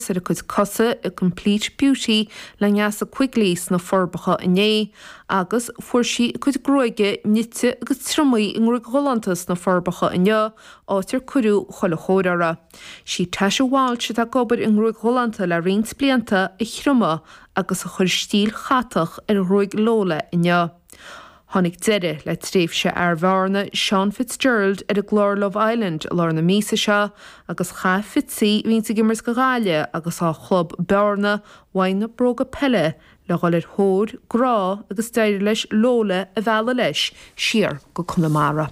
suas ar a cuid cosa i gcomplete beauty le Neasa Quigley sna Forbacha inné agus fuair sí a cuid gruaige nite agus triomaithe i ngruaig ghalánta sna Forbacha inniu, áit ar cuireadh chuile chóir orthu. 'Sí Tasha Walsh atá ag obair i ngruaig ghalánta le roinnt blianta a thriomaigh agus a chuir stíl chatach ar ghruaig Lola inniu. Tháinig deireadh le tréimhse fhear Bhearna, Seán Fitzgerald, ar an gclár Love Island i lár na míosa seo agus chaith Fitzy a bhíonn ag imirt do Ghaillimh agus dá chlub, Bearna, uaidh na bróga peile le dhul ar thóir grá agus d'éirigh leis Lola a mhealladh leis siar go Conamara.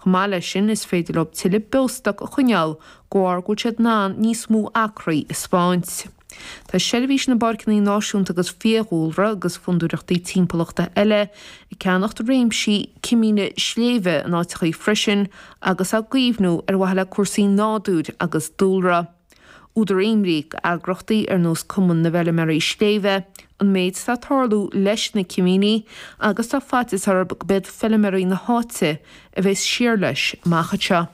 Chomh maith leis sin, is féidir leob tuilleadh beostoic a choinneáil, de bharr go bhfuil siad in ann níos mó acraí a speáint. Tá Seirbhís na bPáirceanna Náisiúnta agus Fiadhúlra agus fondúireachtaí timpeallachta eile ag ceannacht réimsí cimíní sléibhe in áiteachaí freisin agus á gcaomhnú ar mhaithe le cúrsaí nádúir agus dúlra. Údar imní ag eagraíochtaí ar nós Cumann na bhFeilméaraí Sléibhe, an méid atá ag tarlú leis na cimíní agus tá faitíos orthu gob iad feilméaraí na háite a bheas thiar leis amach anseo.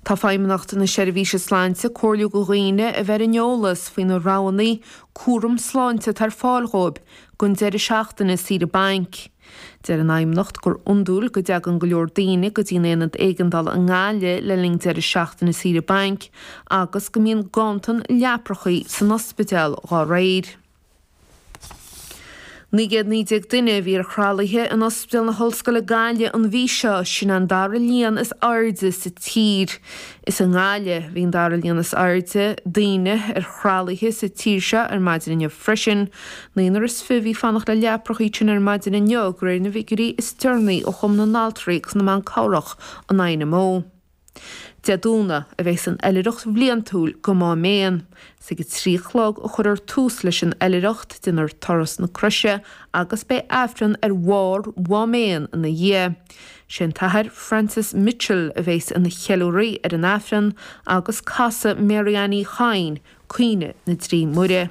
Tá Feidhmeannacht na Seirbhíse Sláinte ag comhairliú go dhaoine a bheith in eolas faoi na roghanna cúram sláinte atá ar fáil dhóibh don deireadh seachtaine saoire bainc. Deir an Fheidhmeannacht gur iondúil go dtagann go leor daoine go dtí an Aonad Éigeandála i nGaillimh le linn deireadh seachtaine saoire bainc agus go mbíonn ganntan leapachaí san ospidéal dá réir. 919 duine a bhí ar thralaithe in Ospidéal na hOllscoile Gaillimh an mhí seo, sin é an dara líon is airde sa tír. Is i nGaillimh a bhí an dara líon is airde daoine ar thralaithe sa tír seo ar maidin inniu freisin, Naonar is fiche a bhí ag fanacht le leapachaí ansin ar maidin inniu, de réir na bhfigiuirí is deireanaí ó Chumann na nAltraí agus na mBan Cabhrach an INMO. Dé Domhnaigh a bheas an oilithreacht bhliantúil go Má Méan. Is ag a trí a chlog a chuirfear tús leis an oilithreacht, déanfar Turas na Croise agus beidh Aifreann ar bharr Mhá Méan ina dhiaidh. Sé an tAthair Francis Mitchell a bheas ina cheiliúraí ar an Aifreann agus casfaidh Mary Ann Uí Chadhain Caoineadh na dTrí Muire.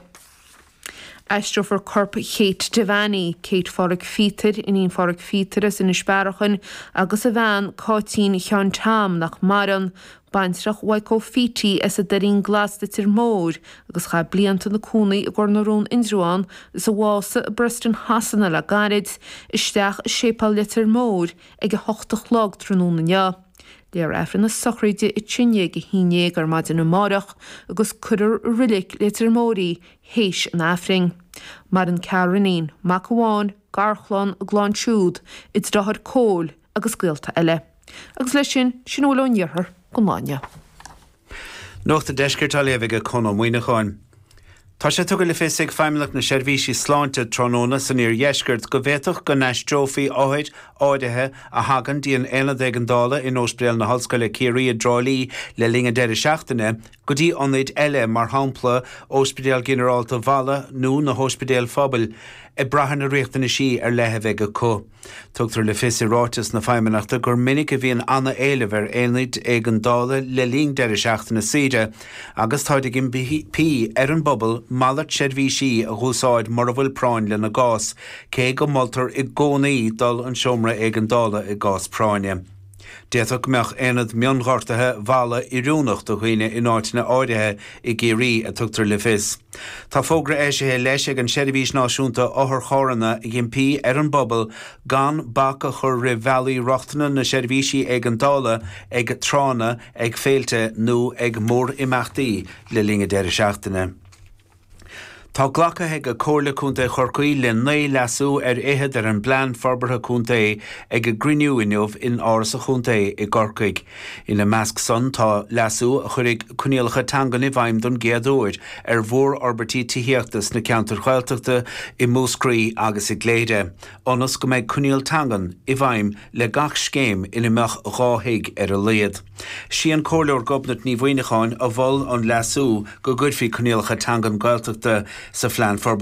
Aistreofar corp Kate Devanney, Kate Phádraic Phíotair, iníon Phádraic Phíotair as Inis Bearachain, agus a bhean, Cáitín Sheáin Tom, nach maireann, baintreach Mhaidhc Ó Fátharta as an Doirín Glas, Leitir Móir, agus chaith blianta ina cónaí i gCor na Rún, Indreabhán, is a bhásaigh i bPreston Shasana le gairid, isteach i Séipéal Leitir Móir ag a hocht a chlog tráthnóna inniu. Léifear aifreann a sochraide ansin ag a haon déag ar maidin amáireach agus cuirear i reilig Leitir Móir í th'éis an aifrinn. Maireann ceathrar iníon, mac amháin, garchlann, a gclann siúd, a deartháir Cóil agus gaolta eile. Agus leis sin, sin a bhfuil ón iarthar gon lá inniu. Nuacht an Deiscirt á léamh ag Conn Ó Muíneacháin. Tá sé tugtha le fios ag Feidhmeannacht na Seirbhíse Sláinte tráthnóna san iardheisceart go bhféadfadh go n-aistreofaí othair áirithe a thagann dtí an Aonad Éigeandála in Ospidéal na hOllscoile Ciarraí i dTrá Lí le linn an deireadh seachtaine go dtí ionaid eile, mar shampla Ospidéal Ginearálta Mhala nó na hOspidéil Phobail, ag brath ar na riachtanaisí ar leith a bheidh acu. Tugtar le fios i ráiteas na Feidhmeannachta gur minic a bhíonn an-éileamh ar aonaid éigeandála le linn deireadh seachtaine saoire agus táid ag impí ar an bpobal malairt seirbhísí a dh'úsáid mura bhfuil práinn lena gcás, cé go moltar i gcónaí dul an seomra éigeandála i gcás práinne. D'fhéadfadh go mbeadh aonad mionghortaithe Mhala oiriúnach do dhaoine in áiteanna áirithe i gCiarraí, a tugtar le fios. Tá fógra eisithe leis ag an Seirbhís Náisiúnta Otharcharranna ag impí ar an bpobal gan bac a chur roimh bhealaí rochtana na seirbhísí éigeandála ag tránna, ag féilte nó ag mórimeachtaí le linn an deireadh seachtaine. Tá glactha ag Comhairle Contae Chorcaí le naoi leasú ar fhichead ar an bPlean Forbartha Contae ag a gcruinniú inniu in Áras an Chontae i gCorcaigh. Ina measc san tá leasú a chuirfidh coinníollacha teangan i bhfeidhm don gcéad uair ar mhórfhorbairtí tithíochta sna ceantair Ghaeltachta i Múscraí agus i gCléire, ionas go mbeidh coinníoll teangan i bhfeidhm le gach scéim ina mbeadh dhá thigh ar a laghad. Sí an Comhairleoir Gobnait Ní Mhuíneacháin a mhol an leasú go gcuirfí coinníollacha teangan Gaeltachta sa Phlean Forbartha.